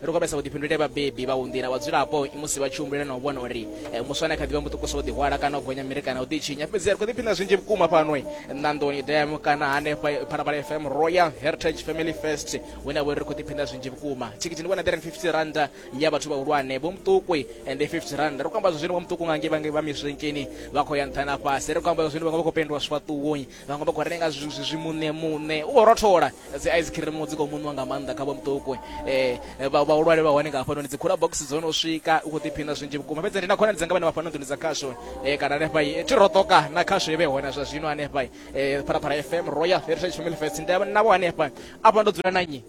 ri khou vhesa vhuḓifhinduleli vhabebi vha u nḓila vhadzulapo musi vha tshi humbulela na u vhona uri eh, muswa ane kha ḓivha muṱukusa u ḓihwala kana u gonya miri kana u ḓitshinya fhedzi ri khou ḓiphina zwinzhi vhukuma fhano eh, ṋandoni dam kana hanefha eh, phalaphala fm royal heritage family first hune vhori ri khou ḓiphina zwinzhi vhukuma thikhithi ndi vhona 350 randa ya vhathu vhahulwane vho muṱuku ndi 50 randa ri khou amba zwa zwino vha muṱuku nga ngei vha miswenkeni vha khou ya nṱha na fhasi ri khou amba zwa zwino vhaṅwe vha khou pendiwa swifhaṱuwoni vhaṅwe vha khou renga zwimuṋe muṋe u khou rothola dzi ice cream dzi khou muṋwa nga maanḓa kha vho muṱuku um eh, vhahulwane vha hone nga hafhanoni dzi khula box dzo no swika u khou ḓiphina zwinzhi vhukuma fhedzi ndi na khonani dzanga vhane vha fhano nḓuni dza khasho um kana hanefha eh, thi roṱoka na khasho ivhe hone zwa zwino hanefha um pharapara fm royal heritage family fest nda navho hanefha afha ndo dzula na nnyi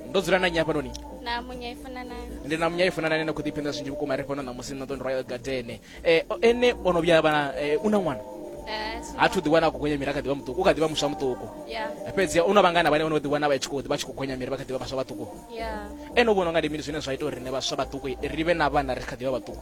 ndo dzula na nnyi hafhanoni na munya i funa nayo ndi na munya i funa nayo na khou ḓiphinda zwinzhi vhukuma ri fhano ṋamusi na ḓoni royal garden eh, ene o no vhuya vha eh, u na ṅwana eh, ha thu ḓiwana a khou gonya miri a kha ḓivha muṱuku u kha ḓivha muswa muṱuku fhedzi u na vhangana vhane vhono ḓiwana vha tshi khou vha tshi khou gonya miri vha kha ḓivha vhaswa vhaṱuku ene u vhona nga ndi mini zwine zwa ita uri rine vhaswa vhaṱuku ri vhe na vhana ri kha ḓivha vhaṱuku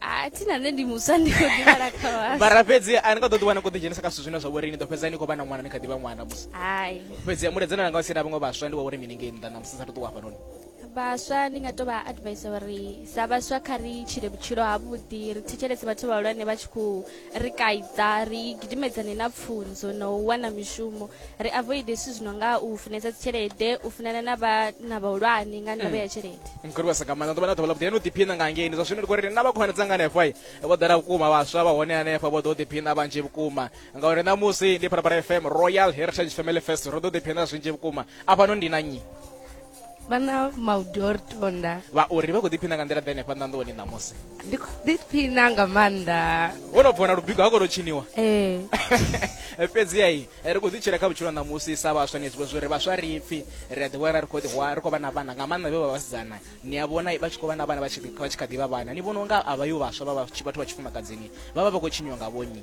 a thi na nṋe ndi muswa ndi khou ḓivhala kha vhaswa mara fhedzi a ni nga ḓo ḓiwana ni khou ḓidzhenisa kha zwithu zwine zwa vhori ni ḓo fhedza ni khou vha na ṅwana ni kha ḓivha ṅwana musi hai fhedzi muledzana langa si na vhaṅwe vhaswa ndi wa uri mini ngei nnḓa na musi sa ṱuṱuwa hafhanoni vhaswa ndi nga to vha advise uri sa vhaswa kha ri tshile vhutshilo ha vhuḓi ri thetshelese vhathu vhahulwane vha tshi khou ri kaidza ri gidimedzane na pfunzo na u wana mishumo ri avoide zwithu zwi no nga u funesa dzitshelede u funana na vhana vhahulwane nga ndavha ya tshelede mkhulu vhasa nga maanḓa ḓuvha na ḓuvha ḽa vhuḓi heno ḓiphina nga ngeni zwa zwino ndi khou ri na vha khonani dzanga hanefho i vho ḓala vhukuma vhaswa vha hone hanefho vho ḓo ḓiphina vhanzhi vhukuma ngauri ṋamusi ndi phalaphala fm royal heritage family fest ro ḓo ḓiphina zwinzhi vhukuma afhano ndi na nnyi vhana maudori tonda vhaori vha khou ḓiphina nga nḓila ḓa henefha nḓanḓoni ṋamusi ndi khou ḓiphina nga maanḓa wo no bvona lubigo ha kono tshiniwa ee eh, fhedziha i eh, ri khou ḓi tshila kha vhutshilo ṋamusi sa vhaswa ni zwibo zwori vhaswa ri pfhi ri a ḓiwana ri khou ḓihwa ri khou vha na vhana nga maanḓa vhe vha vhasidzana ni a vhona vha tshi khou vha na vhana vha tshi kha ḓivha vhana ni vhona unga a vha yo vhaswa vha vhathu vha tshifumakadzini vha vha vha khou tshiniwa nga vhonyi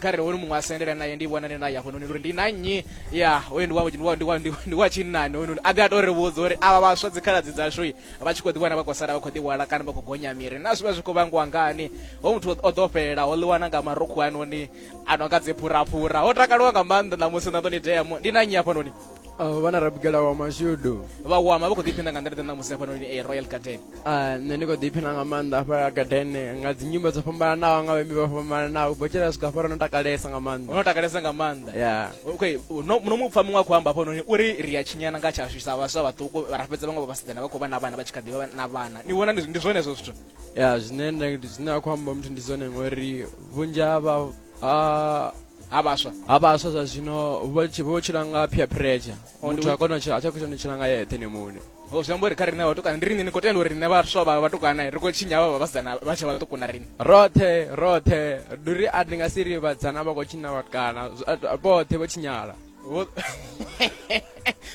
kha re hone muṅwe a sendela naye ndi vhonane naye hafhanoni uri ndi na nnyi ya hoyo ndi wa ndi wa ndi wa ndi wa tshinnani hoyo a ḓi a to ri vhudza uri avha vhaswa dzikhaladzi dzashu vha tshi kho ḓi wana vha khou sala vha khou ḓi wala kana vha khou gonya miri na zwi vha zwi khou vhangiwa ngani ho muthu o ḓo fhelela ho ḽiwana nga marukhu anoni a no nga dziphuraphura ho takaliwa nga maanḓa ṋamusi na ḓo ni tea ndi na nnyi hafhanoni Uh, vhana rabigela wa mashudu vha wama vha khou ḓiphina nga nḓila ḓe ṋamusi hafhanoni e royal garden uh, nṋe ndi khou ḓiphina nga maanḓa hafha garden nga dzinyimbo dzo fhambananaho nga vhaimbi vha fhambananaho botshela swika hafha no takalesa nga maanḓa no takalesa nga maanḓa ya okay no mu pfa muṅwe a khou amba hafhanoni uri ri a tshinyana nga tshashu sa vhaswa vhaṱuku ra fhedza vhaṅwe vha vhasidzana vha khou vha na vhana vha tshi kha ḓivha na vhana ni vhona ndi zwone hezwo zwithu ya zwine zwine a khou amba muthu ndi zwone ngori vhunzhi ha ha vhaswa ha vhaswa zwa zwino vho tshi- vho tshila nga peer pressure Oh, ndi muthu a u- kona u tshila a tsha khou tshila tshila nga yeṱhe ni mune o zwi amba uri kha riṋe vhatukana ndi riṋe ni khou tenda uri riṋe vhaswa vha vhatukana ri khou tshinya vha vha vhasidzana vha tshe vhaṱuku na riṋe roṱhe roṱhe ndi uri a ndi nga si ri vhadzana vha khou tshinya vhatukana Zwi- a- a- vhoṱhe vho tshinyala Wo-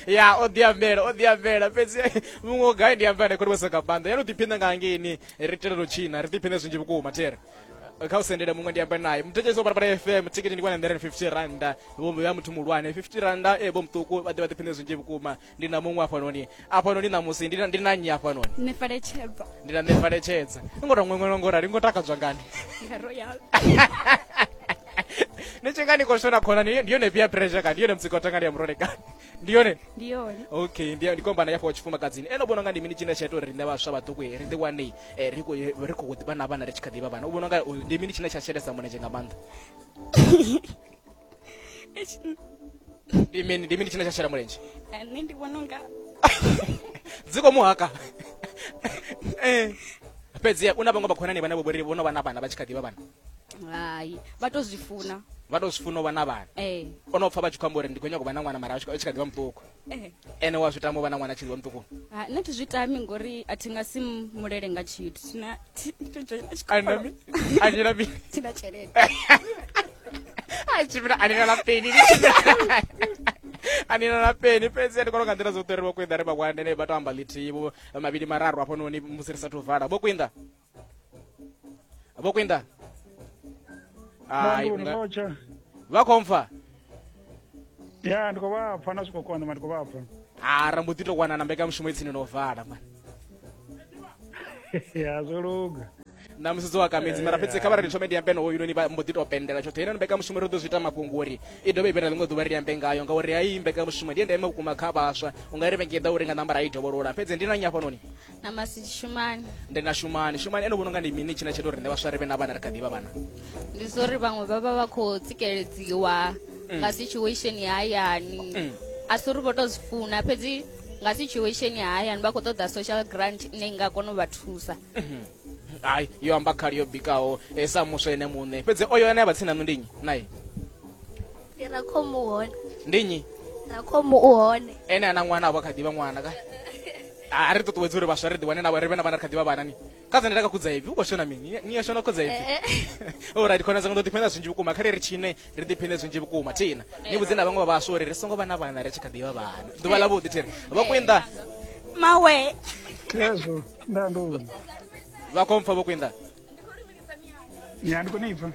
ya o ḓi ambela o ḓi ambela fhedzi muṅwe o gai ndi ambela khori vho soka phanḓa ya no ḓiphina nga hangeini ri telela u tshina ri ḓiphine zwinzhi vhukuma tere Eh, kha u sendele muṅwe ndi ambe naye muthetshelesi wa parapara fm thikiti ndi 150 randa vho vha muthu muhulwane 50 randa e vho muṱuku vha ḓe vha ḓiphine zwinzhi vhukuma ndi na muṅwe afhanoni afhanoni ṋamusi ndi na- ndi na nnyi afhanoni nṋe faletshedza ndi na nṋe faletshedza i ngo to ṅweṅwela ngo rali ngo takadzwa ngani ya royal ni tshi nga ni khou shona khona ni- ndi yone peer pressure kani ndi yone mutsiko tangani ya murole kani ndi yone ndi yone okay ndi ndi kwamba na ya fo tshifumakadzini ene u vhona nga ndi mini tshine tsha ita uri riṋe vhaswa vhaṱuku eh, ri ḓi wane eh, ri khou ri khou ḓi vha na vhana ri tshi kha ḓi vha vhana u vhona nga u- ndi mini tshine tsha shelesa mulenzhe nga maanḓa ndi mini ndi mini tshine tsha shela mulenzhe Eh, nṋe ndi vhona unga dzi khou muhaka Eh. fhedzi u na vhaṅwe vhakhonani vhane vho ri vhono vha na vhana vha tshi kha ḓi vha vhana hai vha to zwi funa vha to zwi funa u vha na vhana ee o no pfa vha tshi khou amba uri ndi khou nyanga u vha na ṅwana mara a tshi kha- a tshi kha ḓi vha muṱuku ee ene wa zwi tama u vha na ṅwana a tshi ḓi vha muṱuku Ha, nṋe thi zwi tami ngori a thi nga si m- mulele nga tshithu Thina- thi- thi- thi- thi- thi- Ana mi- anila mi- thina tshelede a tshi vhila anila na peni anila na peni fhedzi ndi kona nga nḓila dzoṱhe ri vho kwinda ri vhakwande ne vha to amba ḽithihi vho mavhili mararu hafhanoni musi ri sathu vala vho kwinda vokwinda Ai, Bandu unga- ndikocha. vakomfa Ya ndikobapha nasikokwana mandikobapha. ha rambudito kwana na mbekanyamushumo itsini novhala mani Ya zoluga. na musudzi wa kamedzi mara fhedzi kha vha ri thomedi yambe nowo yunoni vha mbo ḓi tou pendela tshoṱhe ine mbekanyamushumo ri ḓo zwi ita mafhungo uri i dovhe ibera ḽiṅwe ḓuvha ri yambe ngayo ngauri hayi mbekanyamushumo ndi ya ndeme vhukuma kha vhaswa u nga ri vhengeda uri nga nambara i dovholola fhedzi ndi na nnyi hafhanoni na masidi shumani ndi na shumani shumani ene vhona unga ndi mini tshine tsha ita uri nṋe vhaswa ri vhe na vhana ri kha ḓivha vhana ndi zwa uri vhaṅwe vha vha vha khou tsikeledziwa mm. nga situation ya hayani mm. a si uri vho tou zwi funa fhedzi nga situation ya hayani vha khou ṱoḓa social grant ine i nga kona u vha thusa mm-hmm. hayi yo amba khali yo bikaho eh, sa muswa ene muṋe fhedzi oyo ane a vha tsini na nṋe ndi nnyi naye ndi rakhomu u hone ndi nnyi rakhomu u hone ene ana ṅwana avho kha ḓivha ṅwana ka a ri ṱuṱuwedzi uri vhaswa ri ḓiwane na ri vhe na vhana ri kha ḓivha vhanani ka dzane ra ka khudza ipfi u khou shona mini ni ya shona khudza ipfi orit khona dzanga ndo ḓiphina zwinzhi vhukuma khare ri tshine ri ḓiphine zwinzhi vhukuma thina ni vhudze na vhaṅwe vha vhaswa uri ri songo vha na vhana ri tshi kha ḓivha vhana ḓuvha ḽa vhuḓi thiri vho kwinda mawe yazwo nda ndo vha khompfa vho kwinda ya ndi kone ipfa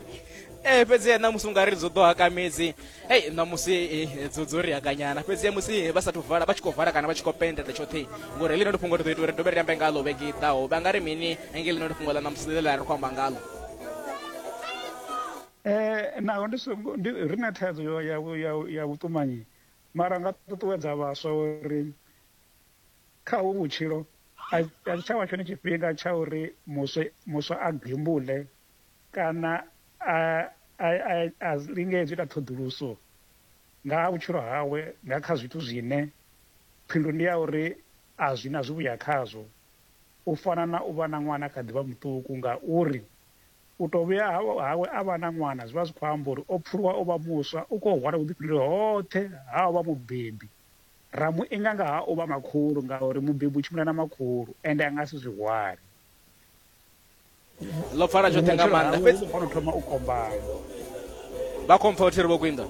ee eh, fhedzi ṋamusi unga ri dzo ḓo hakamedzi ei ṋamusi eh, dzo dzo ri hakanyana fhedzi musi vha sathu vala vha tshi khou vala kana vha tshi khou pendela tshoṱhe ngori heḽi no ndi fhungo ri ḓo ita uri dovhe ri ambe ngalo vhege i ḓaho vha nga ri mini engei ḽi no ndi fhungo ḽa ṋamusi ḽe ḽa ri khou amba ngalo um naho ndi songo ri na thaidzo ya vhuṱumanyi mara nga ṱuṱuwedza vhaswa uri Kha hovhu vhutshilo, a zwi tsha vha tshone tshifhinga tsha uri muswa, muswa a gembule kana a, a, a, a lingedze u ita ṱhoḓuluso nga ha vhutshilo hawe nga kha zwithu zwine phindulo ndi ya uri a zwi na zwivhuya khazwo, u fana na u vha na ṅwana a kha ḓi vha muṱuku, ngauri u tou vhuya hawe a vha na ṅwana zwi vha zwi khou amba uri o pfuluwa u vha muswa, u khou hwala vhuḓifhinduleli hoṱhe ha u vha mubebi. ra mu inga nga ha u vha makhulu ngauri mubebi u tshimbila na makhulu ende a nga si zwi hwale ḽo pfala tshoṱhe nga maanḓa fhedzi khono thoma u kombana vha khompfa uthi ri vho kwinda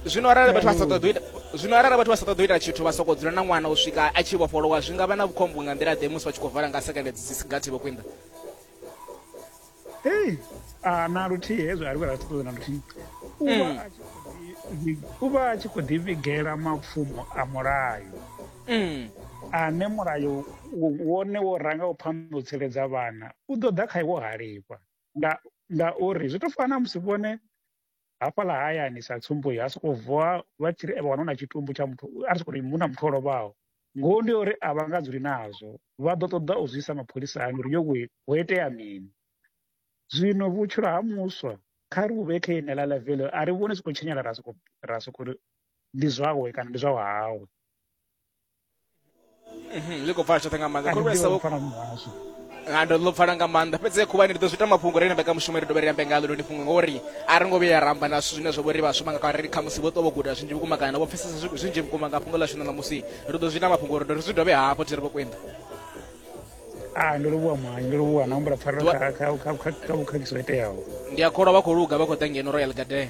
zwino arali vhathu vha sa ṱoḓi ita zwino arali vhathu vha sa ṱoḓi ita tshithu vha soko dzula na ṅwana u swika a tshi vhofholowa zwi nga vha na vhukhombo nga nḓila ḓe musi vha tshi khou vala nga sekende dzi si gathi vho kwinda hei a na luthihi hezwo a ri vha ra ṱuṱuwedza na luthihi u vha mm. a tshi khou ḓi- u vha a tshi khou ḓivhigela mapfumo a mulayo Mm. ane mulayo wo- wone wo ranga u phanḓa u tsireledza vhana u ḓo ḓa kha iwo halifha nga ngauri zwi tou fana na musi vhone hafhaḽa hayani sa tsumbo ya sokou vuwa vha tshi ri vha wana na tshitumbu tsha muthu a ri sokou hu na muthu o lovhaho ngoho ndi uri a vha nga dzuli nazwo vha ḓo ṱoḓa u zwi isa mapholisani uri yo we ho itea mini zwino vhutshilo ha muswa kha ri vhuvhe kha ine ḽa levele a ri vhone sokou tshinyala ra sokou ra sokou ndi zwawe kana ndi zwa hawe Mhm, zwi khou pfala tshoṱhe nga maanḓa khulwane sa vhukuma nga ndo ḽo pfala nga maanḓa fhedzi khuvhani ri ḓo zwi ita mafhungo ri nambe ka mushumo ri dovhe ri ambe ngalo ndi fhungo ngori a ri ngo vhuya ya ramba na zwithu zwine zwa vhori vhashuma nga kare khamusi vho ṱwa vho guda zwinzhi vhukuma kana vho pfesesa zwi- zwinzhi vhukuma nga fhungo ḽashu na ṋamusi ri ḓo zwi ita mafhungo uri ri zwi dovhe hafho thi ri vho kwenda a ndo livhuwa mwayi ndo livhuwa na humbula pfarelo Dwa- kha- kha- kha- kha- kha vhukhakhisi ho iteaho ndi a kholwa vha khou luga vha khou ḓa ngeno royal garden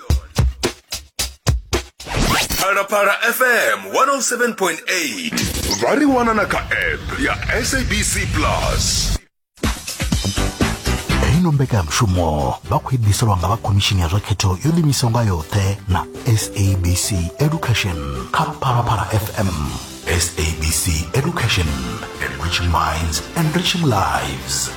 phalaphala fm 107.8 vha ri wana na kha app ya sabc plus ino mbekanyamushumo vha khou idiselwa nga vha khomishini ya zwa khetho yo ḓimisaho nga yoṱhe na sabc education kha phalaphala fm sabc education enriching minds enriching lives